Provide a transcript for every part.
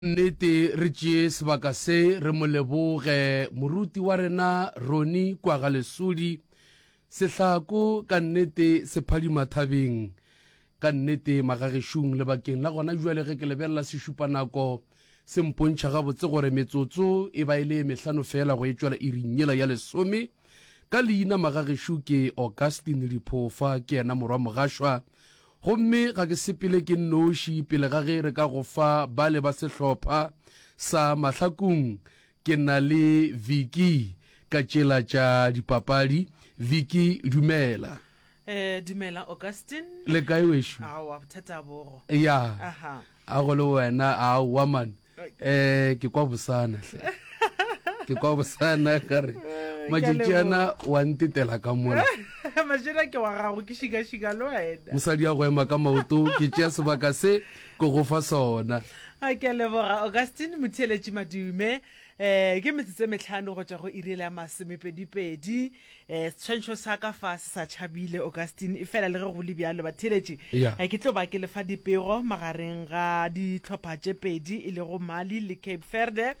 Nnete re tšee sebaka se re mo leboge moruti wa rena Roni Kwaga Lesodi sehlako ka nnete se phadima thabeng ka nnete magagešung le bakeng la gona jwale ge ke lebelela sešupa nako se mpontšha gabotse gore metsotso e ba e le mehlano feela go e tšwela iring yela ya lesome ka leina magagešo ke Augustine Liphofa ke yena morwa mogashwa Gomme ga ke sepele ke nnoši pele ga ge re ka go fa bale ba sehlopha sa mahlakong. Ke na le Vicky ka tšela tša dipapadi. Vicky, Dumela. Ee, dumela, Augustine. Le kae wešo? Aowa, bothata bogo. Ya, Aha. a go le wena, aowa man. eh ke kwa bosana hle ke kwa bosana ka re majitšiana wa ntetela ka mola majena ke wa gago ke šikašika le wena mosadi ya go ema ka maoto ke tšea sebaka se ke go fa sona a ke leboga augustine motheletši madume um ke metsotso e metlhano go tšwa go irele ya masomepedipedi Eh, setshwantšho sa ka fa se sa tšhabile augustine e fela le ge go le bjalo batheletši Yeah. Eh, ke tlo ba ke lefa dipego magareng ga ditlhopha tše pedi e lego mali le cape verde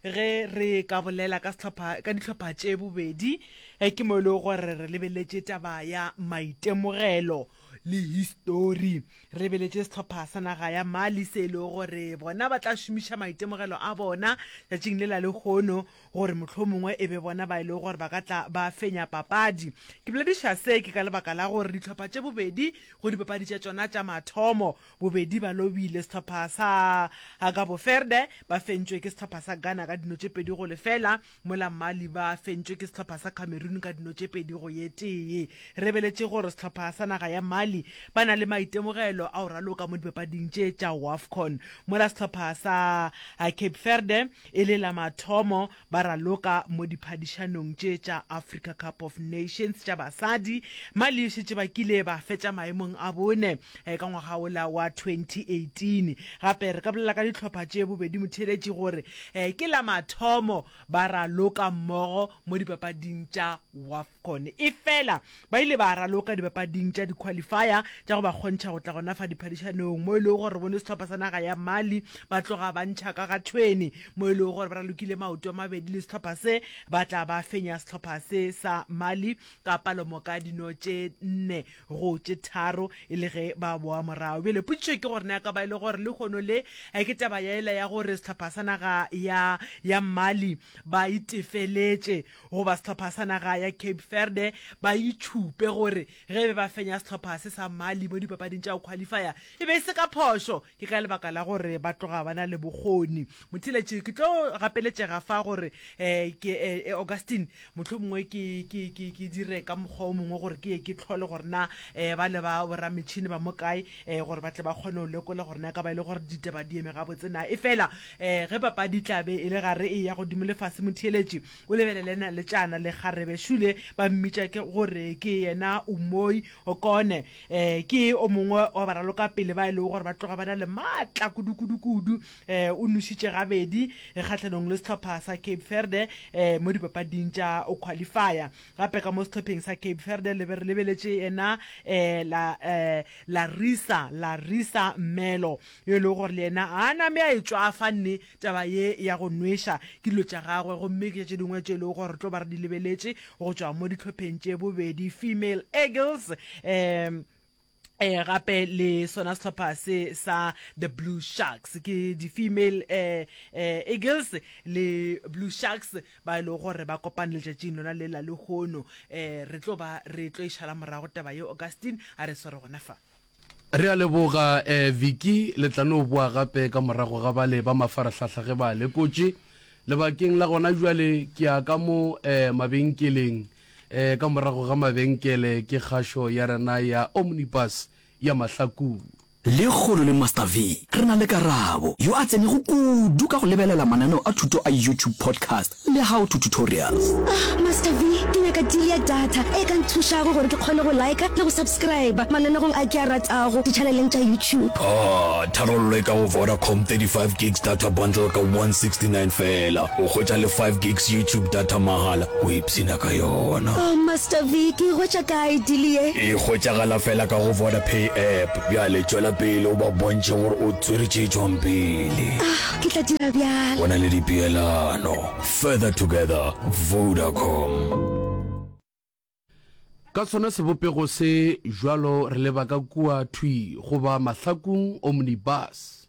ge re ka bolela ka sehlopha- ka ditlhopha tše bobedi eh, ke mo e lego gore re lebeletše taba ya maitemogelo le histori re lebeletše sehlopha sa naga ya mali se e lego gore bona ba tla šomiša maitemogelo a bona tšatšing le la lekgono gore mohlomongwe e be bona ba e lego gore ba ka tla ba fenya papadi. Ke bolediša se ke ka lebaka la gore dihlopha tše bobedi go dipapadi tša tšona tša mathomo, bobedi ba lobile. Sehlopha sa Cabo Verde ba fentšwe ke sehlopha sa Ghana ka dino tše pedi go lefela, mola Mali ba fentšwe ke sehlopha sa Cameroon ka dino tše pedi go ye tee. Re beletše gore sehlopha sa naga ya Mali ba na le maitemogelo a go raloka mo dipapading tše tša Wafcon, mola sehlopha sa Cape Verde E le la mathomo ba raloka mo diphadišanong tše tša Africa Cup of Nations tša basadi, Mali e šetše ba kile ba fetša maemong a bone ka ngwaga wola wa 2018. Gape re ka bolela ka dihlopha tše bobedi motheeletši gore ke la mathomo ba raloka mmogo mo dipapading tša Wafcon, efela Ba ile ba raloka dipapading tša dikhwalifaya tša go ba kgontšha go tla gona fa diphadišanong mo e lego gore bone sehlopha sa naga ya Mali ba tloga ba ntšha ka ga thweni mo e lego gore ba ralokile maoto a mabedi le sehlopha se, ba tla ba fenya sehlopha se sa Mali ka palomoka dino tše nne go tše tharo e le ge ba boa morago. Bjale potšišo ke gore na e ka ba e le gore lehono le ke taba ya ela ya gore sehlopha sa naga ya ya Mali ba itefeletše goba sehlopha sa naga ya Cape Verde ba itšhupe gore ge be ba fenya sehlopha se sa Mali mo dipapading tša go qualifier e be e se ka phošo, ke ka lebaka la gore ba tloga ba na le bokgoni. Motheeletši, ke tlo gapeletšega fa gore ke e Augustine, mohlomongwe ke ke ke ke dire ka mokgwa o mongwe gore ke ye ke tlhole gore na bale ba borametšhini ba mo kae gore ba tle ba kgone go lekola gore na e ka ba e le gore ditaba di eme gabotse na, efela Ee, ge papadi e tla be e le gare e ya godimo le fase, motheeletši o lebelele na le tšana le kgarebe šule ba mmitša ke go re ke yena Umoi Okone. Ee, ke o mongwe wa baralokapele ba e lego gore ba tloga ba na le maatla kudu-kudu-kudu. Ee, o nošitše gabedi kgahlanong le sehlopha sa Cape Verde ee mo dipapading tša qualifier. Gape ka mo sehlopheng sa Cape Verde le be re lebeletše yena ee la ee Larissa Larissa Melo. yo e lego gore le yena a name a e tšwafanne taba ye ya go nweša ke dilo tša gagwe gomme ke tše dingwe tše e lego gore re tlo ba re di lebeletše go tšwa mo ditlhopheng tše bobedi female eagles um eh gape le sona sehlopha se sa the blue sharks ke di-female eh, eh, eagles le blue sharks ba e lego gore ba kopane letšatšing lona le la lehono eh re tlo ba re tlo e šala morago taba ye augustine a re swere gona fa Re a leboga eh Vicky, le tla no boa gape ka morago ga bale ba mafarahlahla ge ba lekotše. Lebakeng la gona bjale ke ya ka mo eh mabenkeleng eh ka morago ga mabenkele ke kgašo ya rena ya Omnibus ya mahlakung. Lekgolo le Master V, re na le Karabo, yo a tsenego kudu ka go lebelela mananeo a thuto a YouTube podcast Le how to tutorials. Ah Master V, ke nyaka deal ya data e ka nthušago gore ke kgone go liker le go subscriber mananegong a ke a ratago di-channeleng tša YouTube. Ah, tharollo e ka go Vodacom, 35 gigs data bundle ka 169 feela, o hwetša le 5 gigs YouTube data mahala, o ipshina ka yona. Oh Master V, ke e hwetša kae deal ye? E hwetšagala feela ka go Vodapay app. Bjale tšwela pele o ba bontšhe gore o tswere tše tšwang pele. Ah, Ke tla dira bjalo. Go na le dipeelano. Further together, Vodacom. Ka sona sebopego se jwalo re leba ka kua thwi goba mahlakung, omnibus.